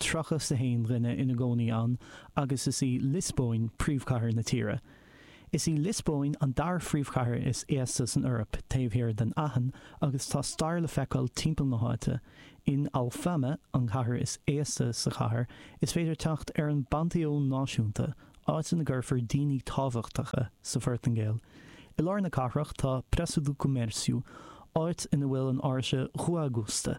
tríocha 's a haon dhuine ina gcónaí ann agus is í Liospóin príomhchathair na tíre. Is í Liospóin an dara phríomhchathair is aosta san Eoraip taobh thiar den Aithin agus tá stair le feiceáil timpeall na háite. In Alfama, an ceantar is aosta sa chathair, is féidir teacht ar an bPanteón Náisiúnta, áit ina gcuirtear daoine tábhachtacha sa Phortaingéil. I lár na cathrach tá Praça do Comércio, áit ina bhfuil Áirse Rua Augusta.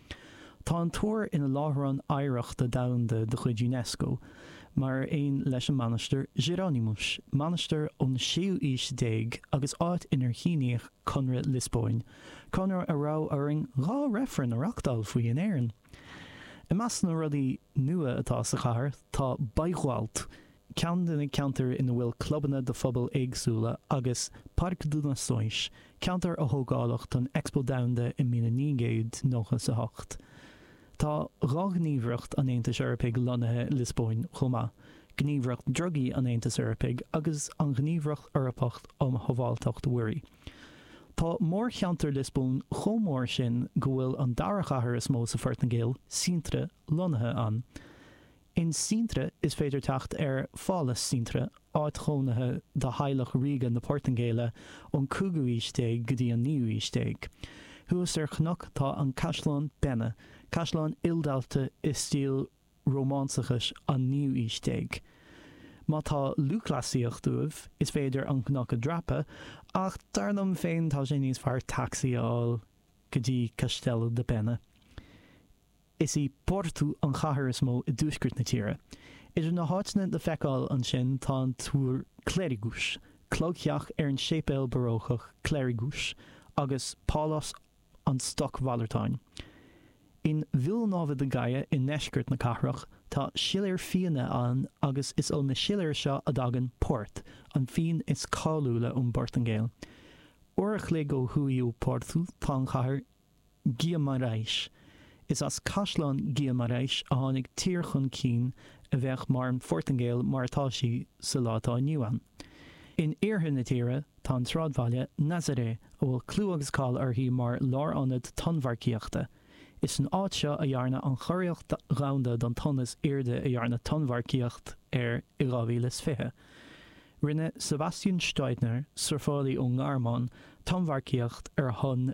Tá an túr ina Láithreán Oidhreachta Domhanda de chuid Unesco, mar aon leis an Mhainistir Jerónimos, mainistir ón séú aois déag agus áit inar síníodh Conradh Liospóin, conradh a raibh orainn dhá reifreann a reachtáil faoi in Éirinn. I measc na rudaí nua atá sa chathair tá Bairro Alto, ceann de na ceantair ina bhfuil clubanna do phobail éagsúla, agus Parque das Nações, ceantar a tógadh don Expo Domhanda i míle naoi gcéad nócha is a hocht. Tá dhá ghníomhaireacht an Aontais Eorpaigh lonnaithe i Liospóin chomh maith, Gníomhaireacht Drugaí an Aontais Eorpaigh agus an Ghníomhaireacht Eorpach um Shábháilteacht Mhuirí. Tá mórcheantar Liospóin chomh mór sin go bhfuil an dara chathair is mó sa Phortaingéil, Sintra, lonnaithe ann. In Sintra is féidir teacht ar Phálas Sintra, áit chónaithe do theaghlach ríoga na Portaingéile ón 5ú haois déag go dtí an 9ú haois déag. Thuas ar chnoc tá an Caisleán Pena, caisleán ildaite i stíl Rómánsachais an 9ú haois déag. Má tá lúthchleasaíocht uaibh, is féidir an cnoc a dreapadh, ach dar liom féin tá sé níos fearr tacsaí a fháil go dtí Castelo da Pena. Is í Porto an chathair is mó i dtuaisceart na tíre. Idir na háiteanna le feiceáil ansin tá an túr Clérigos, cloigtheach ar an séipéal barócach Clérigos, agus pálás an stocmhalartáin. In Vila Nova de Gaia i ndeisceart na cathrach tá siléir fíona ann agus is ó na siléir seo a dtagann port, an fíon is cáiliúla ón bPortaingéil. Uair a chloig ó thuaidh ó Porto tá an chathair Guimarães. Is as Caisleán Guimarães a tháinig tír chun cinn a bheadh mar an Phortaingéil mar atá sí sa lá atá inniu ann. In iarthar na tíre tá an sráidbhaile Nazaré a bhfuil clú agus cáil uirthi mar lárionad tonnmharcaíochta. Is san áit seo a dhearnadh an churiarracht dhomhanda don tonn is airde a dhearnadh tonnmharcaíocht air i 2020. Rinne Sebastian Steudtner, surfálaí ón nGearmáin, tonnmharcaíocht ar thonn